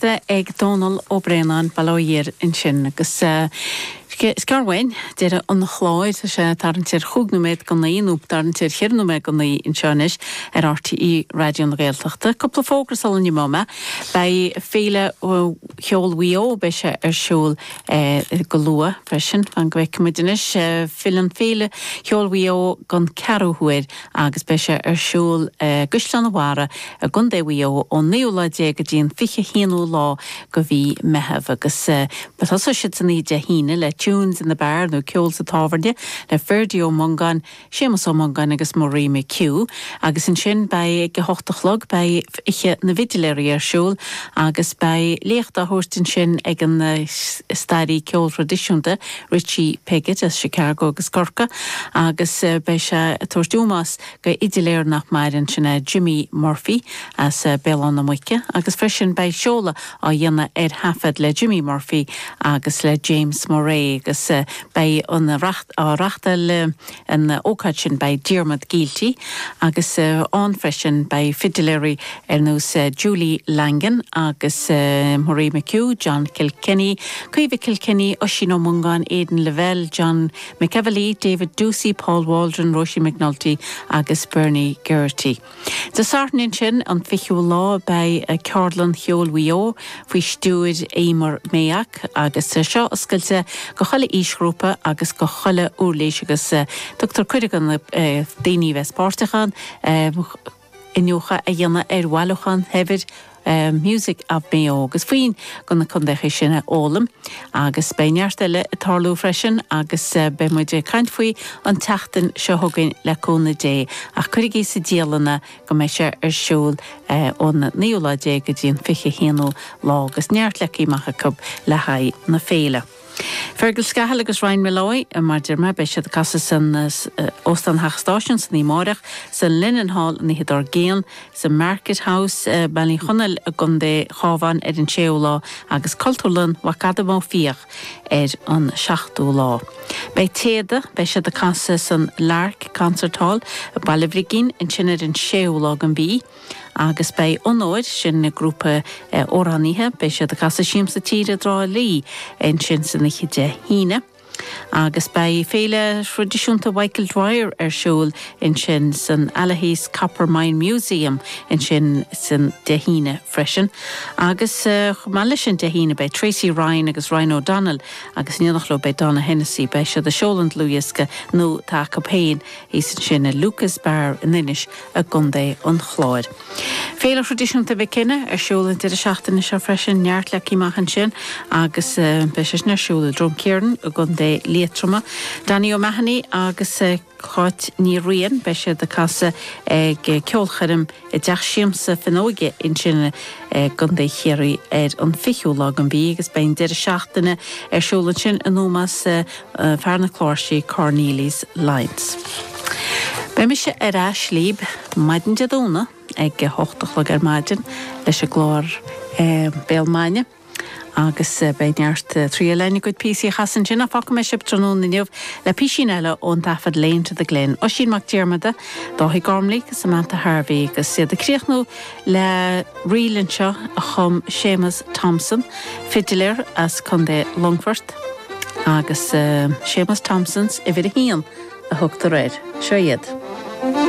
bheith ag Dónall Ó Braonáin bail ó Dhia air ansin agus is gearr uainn deireadh an chláir, tá sé ag tarraingt ar chúig nóiméad go naoi nó ag tarraingt ar cheithre nóiméad go naoi anseo anois ar RTÉ Raidió na Gaeltachta. Cúpla fógra sula n-imeoidh mé, beidh Féile Cheoil Mhaigh Eo, beidh sé ar siúl go luath freisin, fan go bhfeicfidh muid anois, filleann Féile Cheoil Mhaigh Eo don ceathrú huair agus beidh sé ar siúl i gCaisleán an Bharraigh i gContae Mhaigh Eo ón naoú lá déag go dtí an fiche haonú lá go mhí Meitheamh agus tosóidh siad san oíche Dé hAoine le Tunes in the Bar nó Ceol sa Tábhairne le Ferdia Ó Mongáin, Séamus Ó Mongáin agus Marie McHugh agus ansin beidh ag a hocht a chlog beidh Oíche na bhFidiléirí ar siúl agus beidh léacht á thabhairt ansin ag an staraí ceoil thraidisiúnta Richie Piggott as Chicago agus Corcaigh agus beidh sé ag tabhairt ómós go fhidiléir nach maireann, sin é Jimmy Murphy as Béal Átha na Muice agus freisin beidh seoladh á dhéanamh ar thaifead le Jimmy Murphy agus le James Murray agus beidh an á reachtáil i An ócáid sin beidh Diarmuid Gielty agus ann freisin beidh fidiléirí ar nós Julie Langan agus Marie McHugh, John Kilkenny, Caoimhe Kilkenny, Oisín Ó Mongáin, Aidan Lavelle, John McEvilly, David Doocey, Paul Waldron, Róisín McNulty agus Bernie Geraghty. Dé Sathairn ansin, an 20ú lá, beidh Ceardlann Cheoil Mhaigh Eo faoi stiúir Emer Mayock agus seo oscailte go chuile aoisghrúpa agus go chuile uirlís agus tugtar cuireadh do na daoine bheith páirteach ann iniúchadh a dhéanamh ar bhailiúchán shaibhir Music of Mayo agus foinn go na contaetha sin a fhoghlaim. Agus beidh neart eile ag tarlú freisin agus beidh muid ag caint faoi an tseachtain seo chugainn le cúnamh Dé. Ach cuirigí sa dialann é go mbeidh sé ar siúl ón naoú lá déag go dtí an fiche haonú lá agus neart leagtha amach acu le haghaidh na féile. Fergal Scahill agus Ryan Molloy, mar deir mé, beidh siad ag casadh san Óstán Theach an Stáisiúin san oíche amáireach, sa Linenhall an oíche dár gcionn, sa Market House, Baile Uí Chonaill, i gContae Chábháin ar an séú lá agus Cultúrlann Mhac Adaim Ó Fiaich ar an seachtú lá. Beidh Téada, beidh siad ag casadh san Lark Concert Hall, Baile Bhrigín, ansin ar an séú lá den mhí. Agus beidh Onóir, sin an grúpa amhránaithe, beidh siad ag casadh Siamsa Tíre i dTrá Lí ansin san oíche Dé hAoine. Agus beidh Féile Thraidisiúnta Michael Dwyer ar siúl ansin san Allihies Copper Mine Museum ansin san Dé hAoine freisin. Agus chomh maith leis sin Dé hAoine beidh Tracy Ryan agus Ryan O'Donnell agus in éineacht leo beidh Donogh Hennessy, beidh siad ag seoladh an dlúthdhiosca nua atá acu féin thíos ansin i Lucas Bar in Inis i gContae an Chláir. Féile thraidisiúnta Mhic Cionnaith ar siúl an deireadh seachtaine seo freisin, neart le tíocht amach ansin agus beidh sé sin ar siúl i Droim Caorthainn i gContae Liatroma. Danny O'Mahony agus Cáit Ní Riain, beidh siad ag casadh ag ceolchoirm i dTeach Siamsa Fionnúige ansin i gContae Chiarraí ar an 20ú lá den mhí agus beidh an deireadh seachtaine ar siúl ansin in ómós, fear na cláirsí, Cornelius Lyons. Beidh mise ar ais libh maidin Dé Domhnaigh ag a hocht a chlog ar maidin leis an gclár Béal Maidine agus beidh neart traíáil agam a gcuid píosaí a chasadh ansin ach fágfaidh mé sibh tráthnóna inniu le písín eile ón dtaifead Lane to the Glen, Oisín Mac Diarmada, Dáithí Gormley, Samantha Harvey agus iad ag críochnú Le ríl anseo a chum Séamus Thompson, fidiléir as Contae Longfort, agus Séamus Thompson's uimhir a haon a thugtar air. Seo iad.